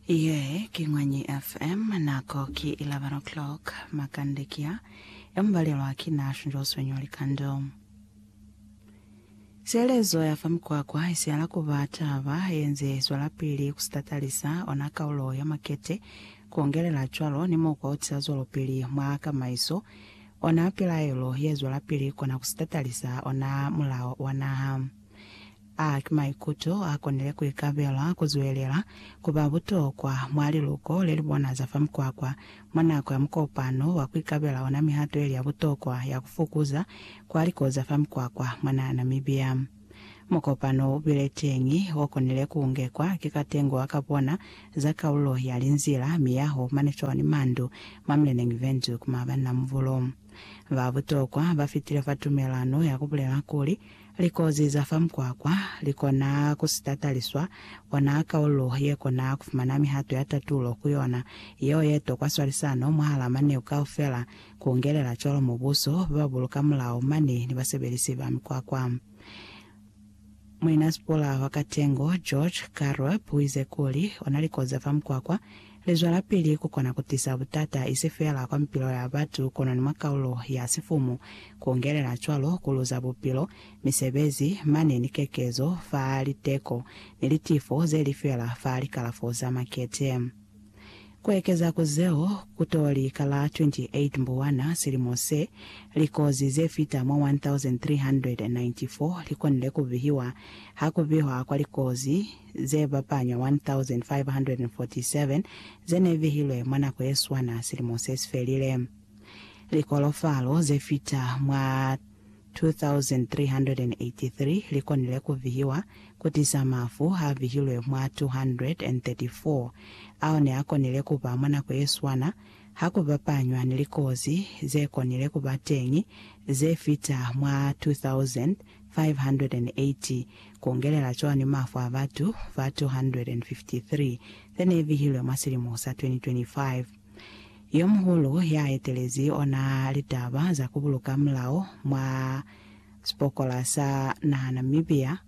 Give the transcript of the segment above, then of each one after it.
Ye ki Ñwanyi FM, nako ki 11 o'clock, makande ki a ya mubalelwa ki Nash njo swenyo likando. Sielezo ya fa mikwakwa isihala kuba taba yenze zwelapili kusitatalisa ona kaulo ya makete, kuongelela cwalo ni mukwa utiza zwelopili mwa kamaiso, ona pilaelo ye zwelapili kona kusitatalisa ona mulao wa naha. A ki maikuto a konile ku ikabela ku zwelela ku ba butokwa mwa liluko le li bona za fa mukwakwa mwa nako ya mukopano wa ku ikabela ona mihato ye li ya butokwa ya ku fukuza kwa liko za fa mukwakwa mwa naha ya Namibia. Mukopano u bile teñi o konile ku ungekwa ki katengo wa ka bona za kaulo ya linzila, miyaho, manifeo ni mandu mwa Mleneng Windhoek mwa banna mubulo ba butokwa ba fitile fa tumelano ya ku bulela kuli Likozi za fa mukwakwa li kona ku si tataliswa, ona kaulu ye kona ku fumana mihato ya tatulo ku yona, yeo ye tokwa swalisano mwahal'a maneu kaufela, ku ungelela cwalo mubuso, ba ba buluka mulao mane ni basebelisi ba mikwakwa. Muinasipula wa katengo, George Karup, u ize kuli, Ona likozi za fa mukwakwa, Lizwelapili ku kona ku tisa butata isi feela kwa mipilo ya batu kono ni mwa kaulo ya sifumu, ku ungelela cwalo ku luza bupilo, misebezi, mane ni kekezo fa liteko ni litifo ze li fela fa likalafo za makete. Ku ekeza ku zeo, ku to li ka la 28 Mbuwana silimo se, likozi ze fita mwa 1,394 li konile ku bihiwa ha ku bihwa kwa likozi ze bapanywa 1,547 ze ne vihilwe mwa nako ye swana silimo se si felile. Likolofalo ze fita mwa 2,383 li konile ku vihiwa ku tisa mafu a vihilwe mwa 234 ao ne a konile ku ba mwa nako ye swana ha ku bapanywa ni likozi ze konile ku ba teñi ze fita mwa 2,000 580, kuongelela cwani mafu a batu ba 253 zene bihilwe mwa silimo sa 2025? Yomuhulu ya etelezi ona litaba za kubuluka mulao mwa sipokola sa naha Namibia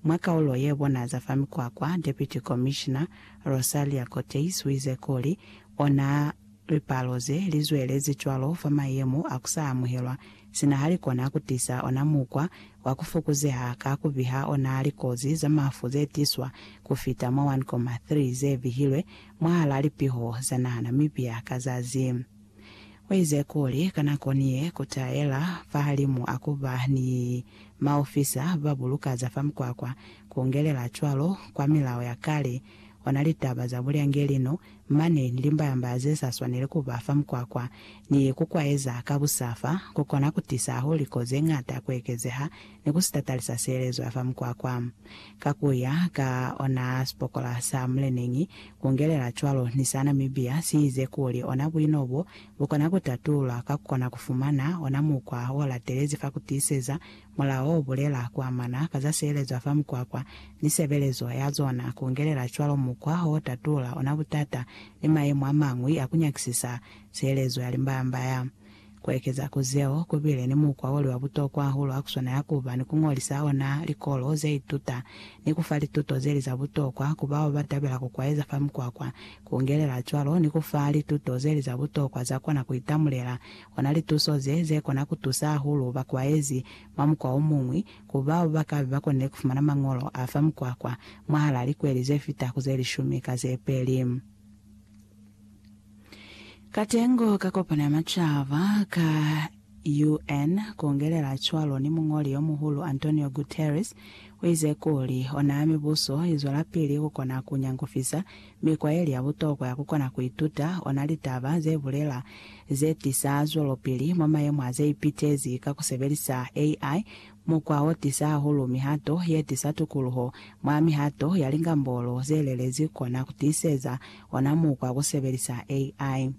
mwa kaulo ye bona za fa mikwakwa, Deputy Commissioner Rosalia Koteis uize kuli ona Lipalo ze li zwelezi cwalo fa mayemo a ku sa amuhelwa sina ha li kona ku tisa ona mukwa wa ku fokuzeha ka ku biha ona likozi za mafu ze tiswa ku fita mwa 1.3 ze bihilwe mwahal'a lipiho za naha Namibia ka zazi. U ize kuli, Ka nako ni ye, ku taela fahalimu a ku ba ni maofisa ba buluka za fa mukwakwa, ku ungelela cwalo kwa milao ya kale, ona litaba za bulyangelino, mane ni limbalamba ze sa swaneli ku ba fa mukwakwa, ni ku kwaeza ka busa fa, ku kona ku tisa ahuliko ze ñata ku ekezeha ni ku sitatalisa sielezo ya fa mukwakwa. Ka ku ya ka ona sipokola sa muleneñi, ku ngelela cwalo ni sa Namibia, si ize kuli ona buino bo, bu kona ku tatulula ka ku kona ku fumana ona mukwa o latelezi fa ku tiiseza Mulao o bulela ku amana ka za sielezo fa mukwakwa ni sebelezo ya zona, ku ngelela cwalo mukwa o tatula ona butata ni mayemo a mañwi a ku nyakisisa sielezo ya limbaya-mbaya. Ku ekeza ku zeo, ku bile ni mukwa o li wa butokwa hahulu ha ku swanela ku ba ni ku ñolisa ona likolo ze ituta ni ku fa lituto ze li za butokwa ku bao ba tabela ku kwaeza fa mukwakwa, ku ngelela cwalo ni ku fa lituto ze li za butokwa za kona ku itamulela Kona lituso ze ze kona ku tusa hahulu bakwaezi mwa mukwa o muñwi ku bao ba ka be ba konile ku fumana mañolo a fa mukwakwa mwahal'a likweli ze fita ku ze lishumi ka ze peli. Katengo ka Kopano ya Macaba ka UN, ku ungelela cwalo ni Muñoli yo Muhulu Antonio Guterres, u ize kuli, Ona mibuso i zwelapili ku kona ku nyangufisa Mikwa ye li ya butokwa ya ku kona ku ituta ona litaba ze bulela ze tisa zwelopili mwa mayemo a ze ipitezi ka ku sebelisa AI, mukwa o tisa hahulu mihato ye tisa tukuluho. Mwa mihato ya lingambolo ze lelezi kona ku tiiseza ona mukwa ku sebelisa AI.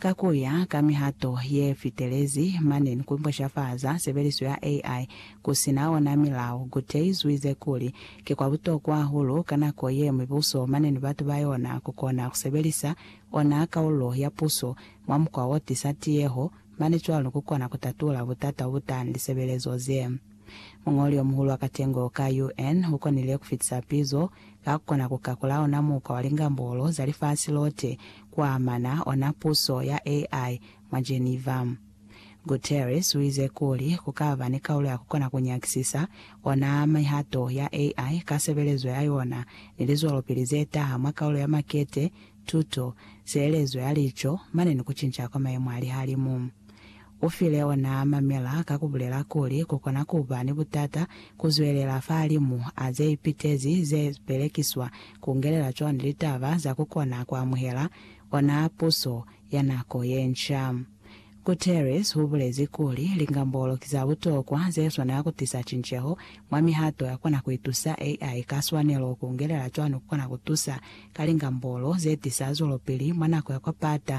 Ka ku ya ka mihato ye fitelezi, mane ni ku mpushafaza sebeliso ya AI ku si na ona milao, Gutierrez u ize kuli, Ki kwa butokwa hahulu ka nako ye mibuso mane ni batu ba yona ku kona ku sebelisa ona kaululo ya puso mwa mukwa wo tisa tiyeho, mane cwalo ku kona ku tatula butata bo butani lisebelezo ze. Muñoli omuhulu wa katengo ka UN ukonile kufitisa pizo ka kukona kukakula ona mukwa wa lingambolo za lifasi lote kuamana ona puso ya AI mwa Geneva. Guterres uize kuli kukaba ni kaulo ya kukona kunyakisisa ona mihato ya AI ka sebelezo ya yona ni lizwelopili zetaha mwa kaulo ya makete, tuto, sielezo ya lico, mane ni kucinca kwa maemo a lihalimu. Ufile onaa mamela ka kubulela kuli kukona kuba ni butata kuzwelela fahalimu a zeipitezi ze belekiswa kungelela cwani litaba za kukona kuamuhela onaa puso ya nako yenca. Guterres ubulezi kuli lingambolo ki za butokwa zeswanela kutisa cinceho mwa mihato yakona kuitusa AI ka swanelo kungelela cwani kukona kutusa ka lingambolo zetisa zwelopili mwa nako ya kwa pata